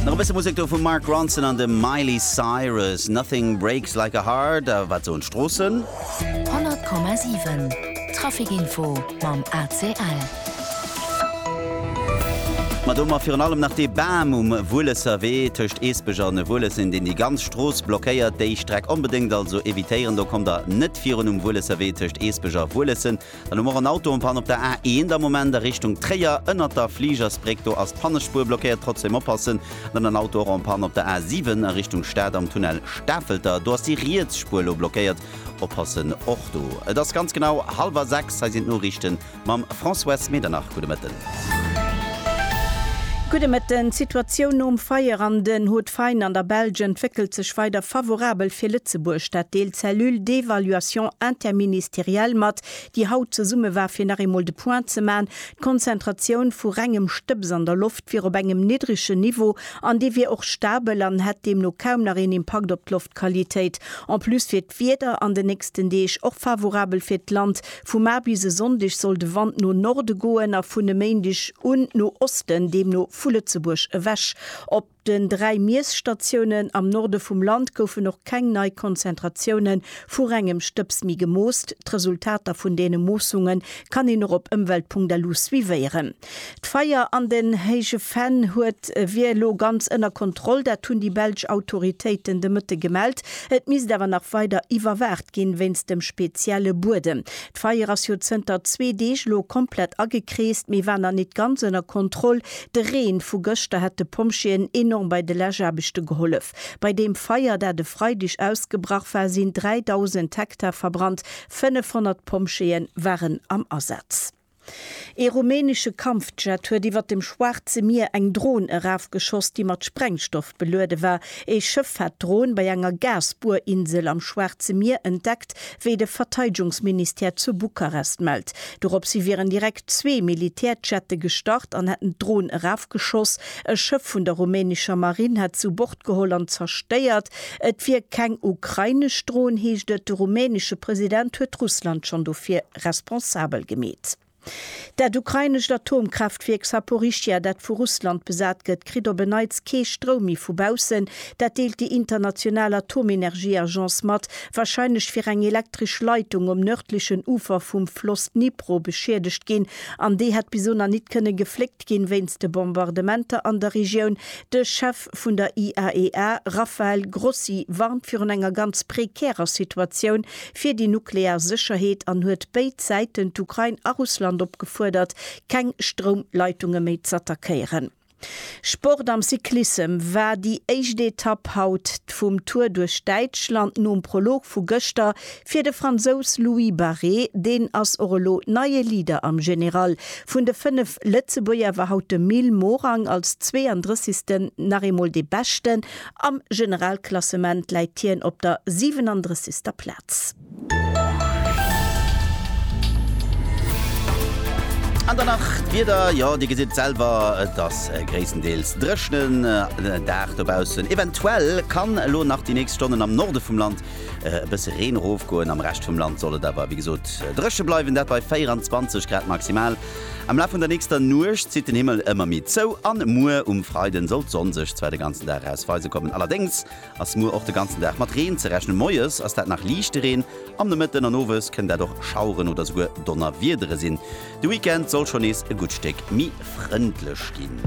Nach e bësse Musek do vum Mark Ronson an dem Miley Cyrus. Nothing breaks like a heart. A wat soen d'Stroossen? 100,7 Traficinfo mam ACL. Ma do mar virun allem nach dee Bam um Wuelesser Wee tëscht Eesbech an Wuelessem, deen déi ganz Strooss blockéiert. Déi Streck onbedéngt also evitéieren, do kommt der net virun um Wuelesser Wee tëscht Eesbech a Wuelessen. Dann hu mer och en Auto en Panne op der A1 am Moment a Richtung Tréier, ënnert der Fligersbréck. Do ass d'Pannespuer blockéiert. Trotzdeem oppassen. Dann en Auto och en Panne op der A7 a Richtung Stad am Tunnel Stafelter. Do ass déi riets Spuer elo blockéiert. Oppassen och do. Et ass ganz genau hallwer sechs. Hei sinn d'Noriichte mam François Medernach. Gudde Mëtten. Gudde Mëtten, D'Situatioun nom Feier an den Hauts de Faine an der Belsch entwéckelt sech weider favorabel fir Lëtzebuerg. Dat deelt d'Cellule d'évaluation interministérielle mat, déi haut zesumme war fir nach eemol de Point ze man. D'Konzentratioun vu rengem Stëbs an der Loft wier op engem niddregen Niveau an dee wier och stabel an hätt deemno kaum nach een Impakt op d'Loftqualitéit. En plus wier d'Wieder an den nächsten Deeg och favorabel fir d'Land. Vu mar bis e Sonndeg soll de Wand no Norde goen a vun e Méindeg un no Osten, deemno vu Lëtzebuerg ewech. Op den dräi Miesstatiounen am Norde vum Land goufen och keng nei Konzentratioune vu rengem Stëbs méi gemoosst. D'Resultater vun deene Moossunge kann een och op ëmwelt.lu suivéieren. D'Feier an den Héije Venn huet wier elo ganz ënner Kontroll. Dat hunn déi belsch Autoritéiten de Mëtte gemellt. Et misst awer nach weider iwwerwaacht ginn, wéinst dem spezielle Buedem. D'Feier ass jo zënter zwee Deeg elo komplett agekreest, mee war nach nit ganz ënner Kontroll. De Reen vu gëschter hätt de Pompjeeën enorm bei de Läschaarbechte gehollef. Bei deem Feier, dat e Freideg ausgebrach war, sinn 3.000 Hektar verbrannt. 500 Pompjeeë waren am Asaz. Ee rumänesche Kampfjet huet iwwer dem Schwaarze Mier eng Dron erafgeschoss, déi mat Sprengstoff beluede war. Ee Schëff hat d'Dron bei enger Gasbuerinsel am Schwaarze Mier entdeckt, wéi de Verteidegungsministère zu Bukarest mellt. Doropshi wieren direkt zwee Militärjette gestart an hätten d'Dron erafgeschoss. E Schëff vun der rumänescher Marinn hätt se u Bord geholl an zerstéiert. Et wier keng ukrainesch Dron, heescht et. De rumänesche President huet Russland schonn dofir responsabel gemeet. Dat ukrainescht Atomkraaftwierk Saporischschja, dat vu Russland besat gëtt, kritt op en Neits kee Stroum méi vu baussen. Dat deelt déi international Atomenergieagence mat. Warscheinlech wier eng elektresch Leitung um nërdlechen Ufer vum Floss Dnipro beschiedegt ginn an déi hätt bis elo nach nit kënne gefléckt ginn, wéinst de Bombardementer an der Regioun. De Chef vun der IAEA, Rafael Grossi, warnt virun enger ganz prekärer Situatioun fir déi nuklear Sécherheet an huet béid Säiten, d'Ukrain a Russland, opgefuerdert, keng Stroumleitunge méi z'attackéieren. Sport Am Cyclissem war déi éischt Etapp haut vum Tour duerch Däitschland nom Prolog vu gëschter Fir de Fransous Louis Barré, deen ass och elo neie Leader am General. Vun de 5 Lëtzebuerger war haut de Mil Morang als 32. nach eemol dee Beschten. Am Generalklassement läit hien op der 37. Plaz. An dann nach d'Wieder, jo Dir gesitt et selwer, et ass e gréisstendeels dréchnen Dag dobaussen. Eventuell kann elo nach déi nächst Stonnen am Norde vum Land e bësse Reen erofgoen. Am Rescht vum Land soll et awer wéi gesot dréche bleiwen, dat bei 24 Grad maximal. Am Laf vun der nächster Nuecht zitt den Himmel ëmmer méi zou a muer um Freiden soll d'Sonn sech zwar de ganzen Dag raus weise kommen. Allerdéngs ass muer och de ganzen Dag mat Reen ze rechnen. Moies ass dat nach liichte Reen, am Nomëtten an Owes kënnen dat och Schaueren oder souguer Donnerwiedere sinn. De Weekend soll schonn nees e gutt Stéck méi frëndlech ginn.